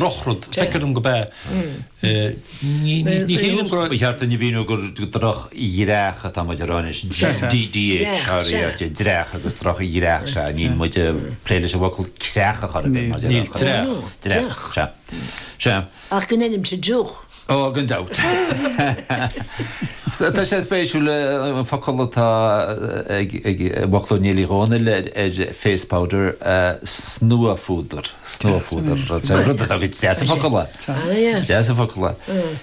drochrud. Feictear dom gurb ea. Ní shílim go. Ba cheart dúinn a mhíniú gur droch-dhreach atá muid a rá anois. DDHRERT, dreach agus droch-dhreach, sea. Níl muid ag plé leis an bhfocal creach a chur i bhfeidhm. Níl dreach. Dreach, sea. Sea. Ach go ndeinimse drúcht. Ó, gan dabht. Tá sé spéisiúil an focal atá i bhfoclóir Néill Uí Dhónaill ar face powder, snuaphúdar, snuaphúdar, rud atá go deas an focal é. Deas an focal é.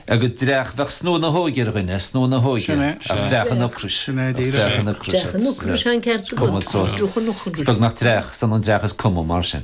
Agus dreach, bheadh snua na hóige ar dhuine, snua na hóige. Ach dreach an ocrais. Sin é, díreach. Dreach an ocrais. Dreach an ocrais, an ceart agat. Is cuma sos. Is beag nach dreach, is ionann dreach is cuma mar sin.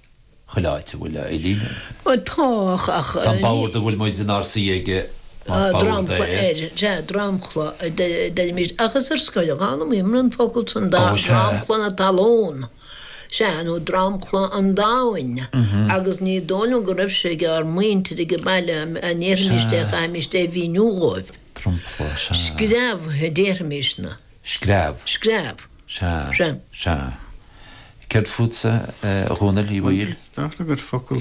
chuile áit a bhfuil Eileen. Tá, ach. Tá an bord a bhfuil muid inár suí aige, más bord é. Sea, dromchla a deirimíd, ach is ar scoil a d'fhoghlaimíomar an focal san, dromchla na talún. Sea, nó dromchla an domhain, agus ní dóigh liom go raibh sé ag ár muintir ag baile dá ndéarfaimís é, chaithfimís é a mhíniú dhóibh. Dromchla, sea. Screamh a déarfaimís-ne. Screamh. Screamh. Sea. Sea. Sea. Céard fútsa, a Dhomhnaill Uí Bhaoill? Is dóigh liom gur focal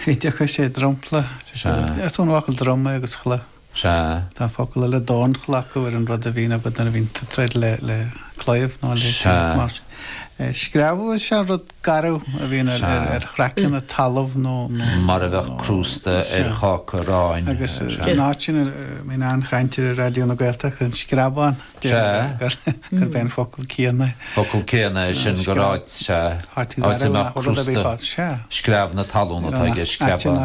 oideachais é dromchla. Sea. Is ón bhfocal drom é agus chla. Sea. Tá focal eile dornchla acu ar an rud a bhíonn agat nuair a bhíonn tú ag troid le claíomh nó le. Sea. Screamh is ea an rud. garbh a bhíonn ar chraiceann an talaimh nó. mar a bheadh crústa ar cháca aráin. Agus an áit sin a mbíonn an-chaint air ar Raidió na Gaeltachta, an Screabán, gurb é an focal céanna é. Focal céanna é sin gur áit, sea, áit a mbeadh crústa, screamh na talún atá aige, screabán.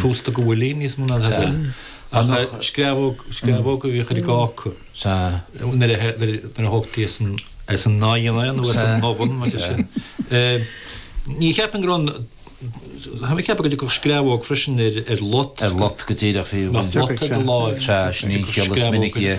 crosta go bhfuil níos mó ná a bhfuil. Ach screamhóg, screamhóg a bhíodh ar an gcáca nuair a thógtaí as an oigheann nó as an oven mar sin. Ní cheapfainn go raibh, tá mé ag ceapadh go dtiocfadh screamhóg freisin ar lot. Ar lot go díreach, bhí, bhí. Lot ar do láimh. Sea, sin é an chiall is minicí a.